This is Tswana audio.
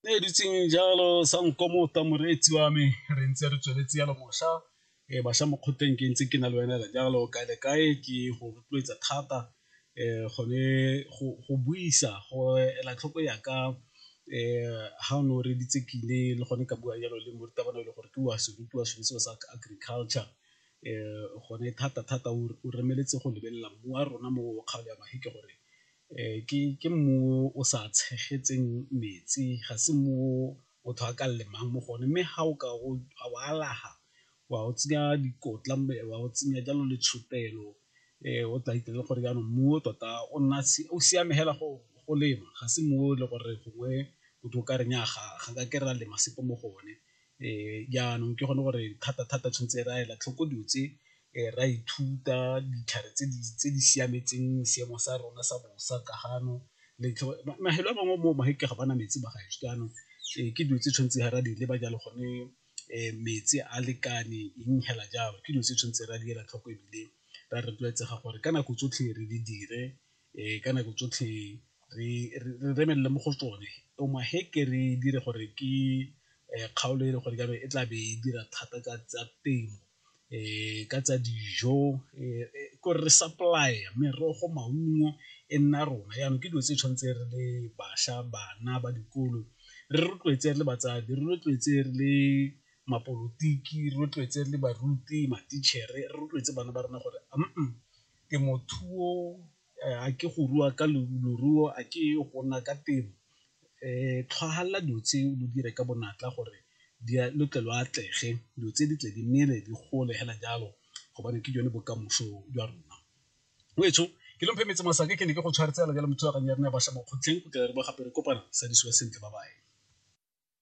ne e dutseng jalo sa nkomota moreetsi wa me re ntse re tsweletse yalo mošwa um bašwa mo kgoteng ke ntse ke na le wena le jalo kae le kae ke go rotloetsa thata um gone go buisa go ela tlhoko yaka um ha o ne o reditse ke ile le gone ka bua jalo le morutabana e le gore ke wa se rutiwa sone seo sa agriculture um gone thata-thata o remeletse go lebelela mmu wa rona mo kgaolo ya gore ke mmu o sa tshegetseng metsi ga se mmu o motho a ka lemang mo go one, mme ga o ka o alafa wa o tsenya dikotla wa o tsenya jalo le tshupelo o tla itse gore jaanong mmu o tota o nna o siame fela go lema ga se mmu o le gore gongwe motho o ka re nnyaa ga ka ke ra lema sepe mo go one, jaanong ke gone gore thata thata tshwanetse re a ela tlhoko dilo tse re a ithuta ditlhare tse di siametseng seemo sa rona sa bosa ka gano mafelo a mangwe mo magetla ga bana metsi ba gaetsho jaanong ke dilo tse tshwanetse ga re a di leba jalo gone metsi a lekane eng fela jalo ke dilo tse tshwanetse re a di ela tlhoko ebile re a rotloetsega gore ka nako tsotlhe re di dire um ka nako tsotlhe re remelele mo go tsone omaheke re dire gore ke kgaolo e le gore ka be e tla be e dira thata ka tsa temo um ka tsa dijo ko re supply-a merogo maungo e nna rona yanong ke dilo tse tshwanetse re le bašwa bana ba dikolo re rotloetse re le batsadi re rotloetse re le mapolotiki rotloetse le baruti ma-teacher-e re rotloetse bana ba rona gore temothuo a ke go rua ka leruo a ke go nna ka temo tlhwahala dilo tse lo dire ka bonatla gore lo tle lo atlege dilo tse di tle di mmele di gole fela jalo gobane ke jone bokamoso jwa rona. Ngwaneso ke lo mphe metse masake ke ne ke go tshwaretse fela jalo mo thulaganyong ya rona ya bašwa mo kgotleng go tle re bo gape re kopana sa disiwa sentle ba baye.